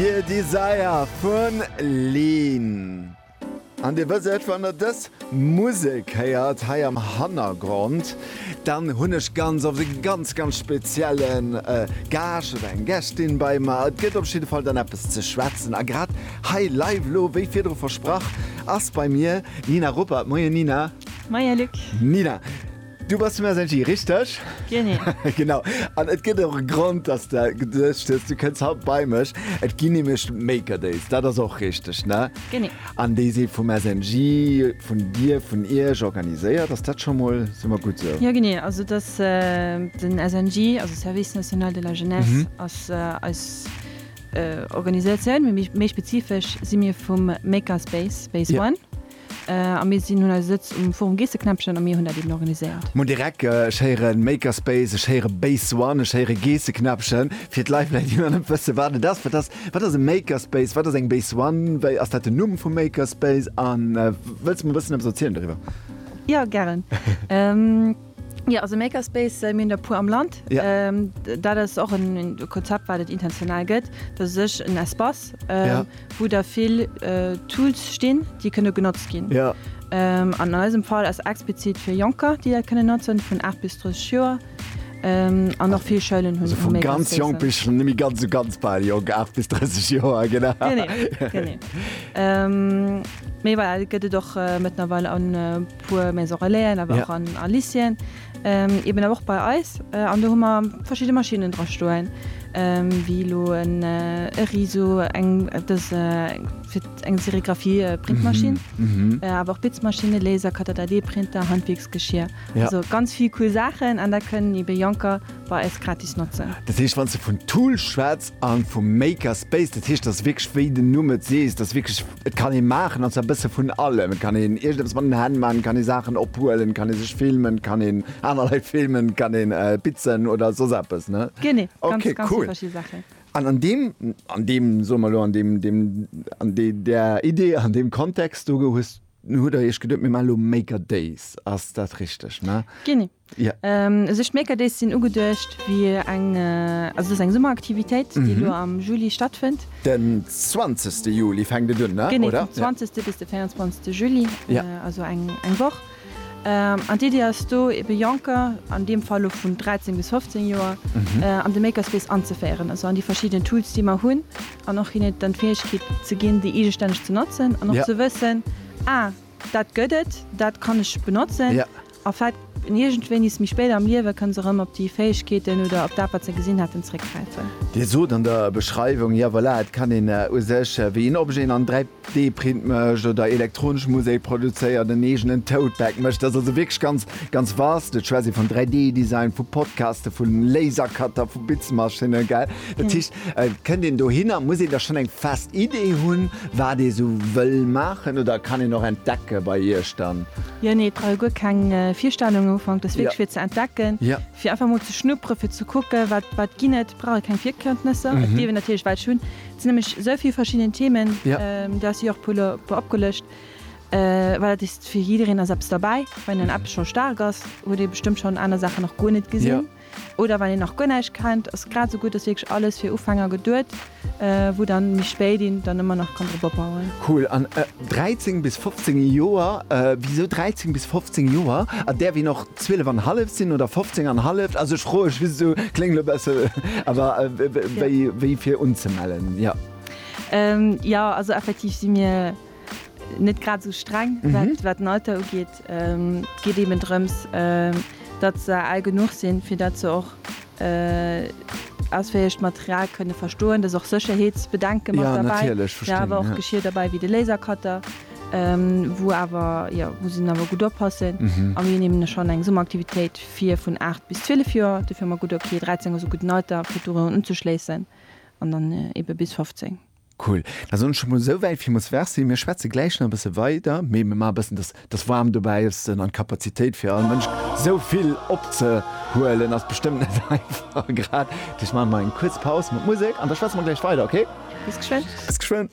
Dear Desire vun Leen. An Dir wësst et, wann Der dës Musek héiert hei am Hannergrond, dann hunn ech ganz oft e ganz, ganz spezielle Gaascht oder eng Gästin bei mer. Et gëtt op jidde Fall dann eppes ze schwätzen. A grad hei live elo, wéi virdru versprach, ass bei mir d'Nina Ruppert. Moien Nina. Moien Luc. Nina. Du bass dem SNJ, richteg? Genee. Genau. An et gëtt och e Grond, dass de geduecht hues, du kënns haut bei mech. Et ginn nämlech d'Maker Days. Dat ass och richteg, ne? Genee. An déi si vum SNJ, vun dir, vun iech organiséiert. Ass dat scho mol summer gutt esou? Jo, genee. Also et ass den SNJ, also Service National de la Jeunesse, ass eis Organisatioun. Mee méi spezifesch si mir vum Maker Space, Space One. A mir sinn hunn eise Sëtz um Forum Geesseknäppchen a mir hunn dat eben organiséiert. Moin Derek, ech héieren Makerspace, ech héieren Base One, ech héieren Geesseknäppchen. Fir d'Leit vläit déi nach net wëssen wat et ass, wat ass wat ass e Makerspace, wat ass eng Base One, wéi ass dat den Numm vum Makerspace an wëlls mer e bëssen eppes erzielen doriwwer? Jo, gären. Jo, also Makerspace, mir hunn der e puer am Land. Dat ass och e Konzept, wat et intentional gëtt. Dat ass u sech en Espace, wou da vill Tools stinn, déi kënne genotzt ginn. An eisem Fall ass explizit fir Jonker, déi dat kënnen notzen, vun 8 bis 30 Joer. An och vill Schoulen hunn Makerspace. Also vu ganz jonk bis nëmme ganz u ganz bal jonk, 8 bis 30 Joer, genau. Genee, genee. Mee voilà, et gëtt et och mëttlerweil an. Puer Maison Relaisen, awer och an a Lycéeën, eben awer och bei eis. An do hu mer verschidde Maschinnen dra stoen, wéi elo en e Riso, eng dës fir eng Serigraphie Printmaschinn, awer och Bitzmaschinne, Laser, Catatat-D-Printer, Handwierksgeschir, also ganz vill cool Saachen. An dat kënnen ebe Jonker bei eis gratis notzen. Dat heescht, wann s de vun Tool schwätz, An vum Maker Space, dat heescht, dass wierklech, wéi den Numm et seet, dass wierklech, et kann ee maachen, an zwar e bësse vun allem. Et kann een iergendeppes mat den Hänn maachen, et kann ee Saachen ophuelen, et kann ee sech filmen, et kann een aner Leit filmen, et kann een bitzen oder soss eppes, ne? Genee, ganz, ganz vill verschidde Saachen. Okay, cool. An an deem, an deem, soe mer elo, an deem, deem, an där Idee, an deem Kontext do hues, hutt Der Iech geduet, mir maache lo Maker Days. Ass dat richteg, ne? Genee. Ja. Esou Schmeekerdays sinn ugeduecht fir eng, also et ass eng Summeraktivitéit, déi elo am Juli stattfënnt. Den 20. Juli fänkt et un, ne, oder? Genee, vum 20. bis de 24. Juli, also eng Woch. An d'Iddi ass do, ebe Jonker, an deem Fall elo vun 13 bis 15 Joer, an de Makerspace anzeféieren, also an déi verschidden Tools, déi mer hunn, an och hinnen dann d'Fäegkeet ze ginn, déi eegestänneg ze notzen an och ze wëssen, Ah, dat gëtt et, dat kann ech benotzen. A vläit iergendwéinis méi spéit am Liewe kënne se erëm op déi Fäegkeeten oder op dat, wat se gesinn haten, zréckgräifen. Dir sot an der Beschreiwung, ja voilà, et kann een u sech, wéi een Objet an 3D-Print mécht oder elektronesch Musek produzéiert, en eegenen Tote-Bag mécht, dat ass also wierklech ganz, ganz vaste. Et schwätzt ee vun 3D-Design, vu Podcasten, vu Lasercutter, vu Bitzmaschinnen, gell? Dat heescht, et kënnt een dohinner. Muss een da schonn eng fest Idee hunn, wat ee sou wëll maachen oder kann een och entdecken bei iech dann? Jo nee et brauch ee guer keng Virstellung um Ufank dass wierklech fir ze entdecken, fir einfach mol ze schnupperen, fir ze kucken wat wat ginn et. Et brauch ee keng Virkëntnesser, et dierf een natierlech welch hunn. Et sinn nämlech esou vill verschidden Themen, du has se jo och e puer e puer opgelëscht, well dat is fir jiddereen ass eppes derbäi. Wann een an eppes scho staark ass, huet ee bestëmmt schonn aner Saachen nach guer net gesinn. Oder wann een nach guer näischt kennt, ass grad esou gutt, ass wierklech alles fir Ufänger geduet, wou dann méi spéit een dann ëmmer nach kann drop opbauen. Cool, an 13 bis 15 Joer, wisou 13 bis 15 Joer? Et däerf een och 12 an halleft sinn oder 15 an halleft, also ech froe just esou, kléngt elo e besse, awer wéi fir unzemellen, jo. Jo, also effektiv si mir. net grad sou streng wat den Alter ugeet. Et geet eben drëms, datt se al genuch sinn, fir datt se och ausféierlecht Material kënne verstoen. Da si och Sécherheetsbedenke mat derbäi, mä awer och Geschir derbäi wéi de Lasercutter, wou awer, jo, wou se awer gutt oppassen. A mir hunn eben schonn eng Summeraktivitéit fir vun 8 bis 12 Joer. Dofir hu mer geduet, okay, 13 ass e gudden Alter fir dorun unzeschléissen an dann ebe bis 15. Cool. Da soen ech emol esou wäit villmools Merci. Mir schwätze gläich nach e bësse weider, mee mir maache e bëssen, dass dass Warmt dobäi ass an d'Kapazitéit fir all Mënsch esou vill opzehuelen ass bestëmmt net einfach grad. Dech maache mer eng kuerz Paus mat Musek an da schwätze mer gläich weider, okay? Bis geschwënn. Bis geschwënn.